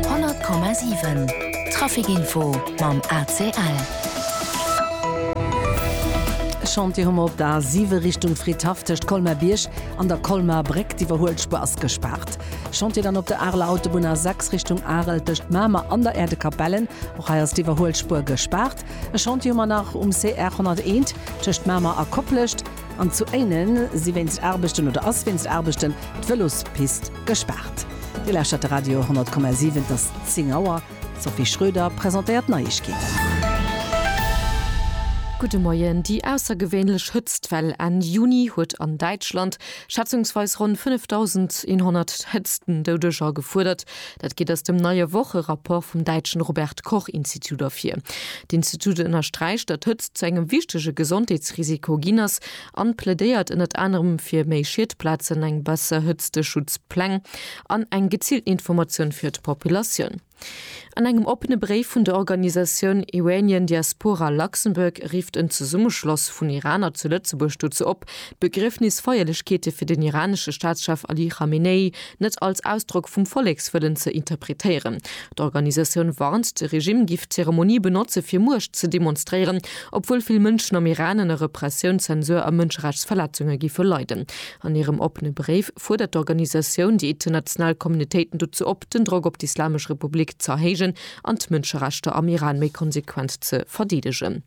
100,7 Trafic Info mam ACL. E Chantier hu mer op der A7 Richtung Fridhaff tëscht Colmer-Bierg an der Colmer-Bréck. D'Iwwerhuelspuer ass gespaart. Chantier dann op der Areler Autobunn A6 Richtung Arel tëscht Mamer an der Äerdekapellen. Och hei ass d'Iwwerhuelspuer gespaart. E Chantier hu mer nach um CR 101 tëscht Mamer a Koplescht. An zu Éinen si wéinst Aarbechten, oder ass wéinst Aarbechten, d'Vëlospist Gespaart! Geläschert de Radio 10,7, et ass 10 Auer. D'Sophie Schröder presentéiert d'Neiegkeeten. Gudde Moien. Déi aussergewéinlech Hëtztwell Enn Juni huet an Däitschland schätzungsweis ronn 5.100 Hëtztendoudeger gefuerdert. Dat geet aus dem neie Wocherapport vum däitschen Robert-Koch-Institut ervir. D'Institut ënnersträicht, datt Hëtzt zu engem wichtege Gesondheetsrisiko ginn ass an plädéiert ënnert anerem fir méi Schietplazen, eng besser Hëtzteschutzpläng an eng geziilten Informatioun fir d'Populatioun. An engem oppene Bréif vun der Organisatioun Iranian Diaspora Luxembourg rifft en Zesummeschloss vun Iraner zu Lëtzebuerg dozou op, d'Begriefnisfeierlechkeete fir den iranesche Staatschef Ali Khamenei net als Ausdrock vum Vollekswëllen ze interpretéieren, D'Organisatioun warnt, de Regimm giff d'Zeremonie benotze fir Muecht ze demonstréieren, obwuel vill Mënschen am Iran ënner Repressioun, Zensur a Mënscherechtsverletzunge giffe leiden. An hirem oppene Bréif fuerdert d'Organisatioun déi international Communautéiten dozou op, den Drock op d'Islamesch Republik z'erhéijen an d'Mënscherechter am Iran méi konsequent ze verdeedegen.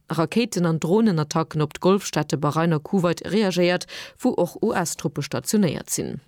Rakéiten an Dronenattacken op d'Golfstaate Bahrain a Kuwait reagéiert, wou och US-Truppe stationéiert sinn.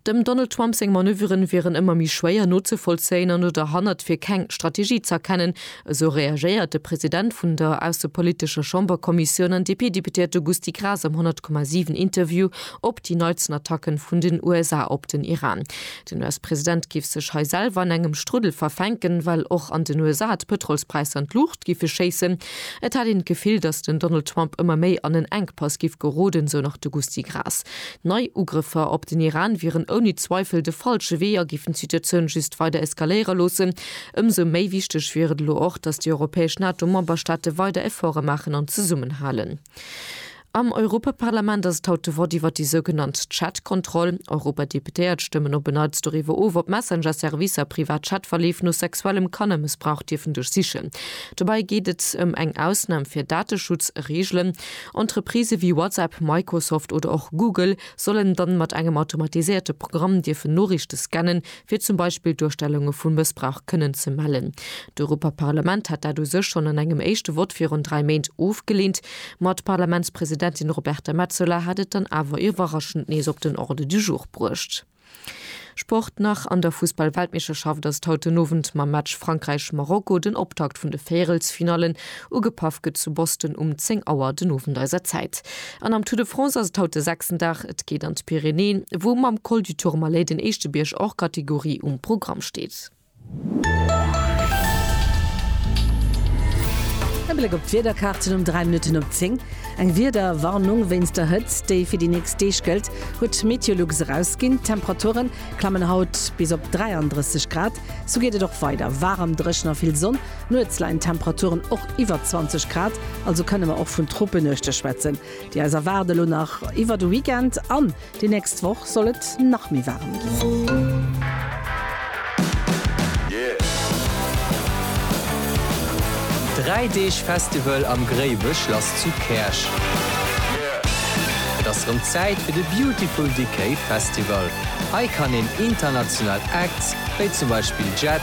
Dem Donald Trump seng Manöveren wieren ëmmer méi schwéier nozevollzéien an oder hannert fir keng Strategie z'erkennen, esou reagéiert de President vun der aussepolitescher Chamberkommissioun an DP-Deputéierte Gusty Graas am 100,7 Interview op déi neitsten Attacke vun den USA op den Iran. Den US-President géif sech hei selwer an engem Struddel verfänken, well och an den USA d'Pëtrolspräisser an d'Luucht giffe schéissen. Et hätt een d'Gefill, datt den Donald Trump ëmmer méi an en Enkpass giff geroden, sou nach de Gusty Graas. Nei Ugrëffer op den Iran wieren ouni Zweifel de falsche Wee a giffen d'Situatioun just weider eskaléiere loossen. Ëmsou méi wichteg wier et elo och, datt déi europäesch NATO-Memberstaate weider Efforte maachen an zesummenhalen. Am Europaparlament ass et haut de Vott iwwer déi sougenannt Chat-Kontroll. Europadeputéiert stëmmen op en Neits doriwwer of, ob Messenger-Servicer privat Chat-Verleef no sexuellem Kannermëssbrauch dierfen duerchsichen. Dobäi geet et ëm eng Ausnam fir Dateschutz-Reegelen. Entreprisë wéi WhatsApp, Microsoft oder och Google sollen dann mat engem automatiséierte Programm dierfen Noriichte scannen, fir zum Beispill Duerstellunge vu Mëssbrauch kënnen ze mellen. D'Europaparlament hat dat u sech schonn an engem éischte Vott virun dräi Méint ofgeleent, ma d'Parlamentspresidentin Roberta Metsola hat et dann awer iwwerraschend nees op den Ordre du jour bruecht. Sport nach, An der Fussball-Weltmeeschterschaft ass et haut den Owend mam Match Frankräich-Marokko den Optakt vun de Véierelsfinallen. Ugepaff gëtt zu Boston um 10 Auer den Owend eiser Zäit. An am Tour de France ass et haut de sechsten Dag. Et geet an d'Pyrenäen, wou mam Col du Tourmalet den éischte Bierg hors catégorie um Programm steet. E Bléck op d'Wiederkaarten um 3 Minutten op 10. Eng Wiederwarnung wéinst der Hëtzt, déi fir déi nächst Deeg gëllt, huet d'Meteolux erausginn. D'Temperature klammen haut bis op 33 Grad. Sou geet et och weider, waarem, dréchen a vill Sonn. Nuets leien d'Temperaturen och iwwer 20 Grad, also kënne mer och vun Tropenuechte schwätzen, déi eis erwaarden. Elo nach iwwer de Weekend an déi nächst Woch soll et nach méi waarem ginn. Dräi Deeg Festival am Gréiwech lass zu Käerch. Et ass rëm Zäit fir de Beautiful Decay Festival. Hei kann een international Acts, wéi zum Beispill Jett,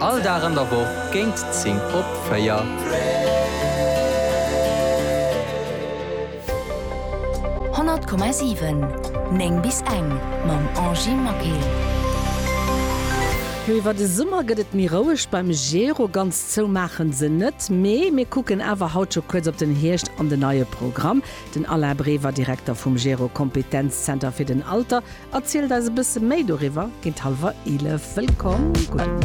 All Dag an der Woch géint 10 op 4. Honnert Komma siwen, néng bis eng, mam Angie Maquet. Jo iwwer de Summer gëtt et méi roueg beim Gero. Ganz zou maachen se net, mee mir kucken awer haut scho kuerz op den Hierscht an den neie Programm. Den Alain Brever, Direkter vum Gero Kompetenzzenter fir den Alter, erzielt eis e bësse méi doriwwer géint hallwer 11. Wëllkomm! Gudde Muer.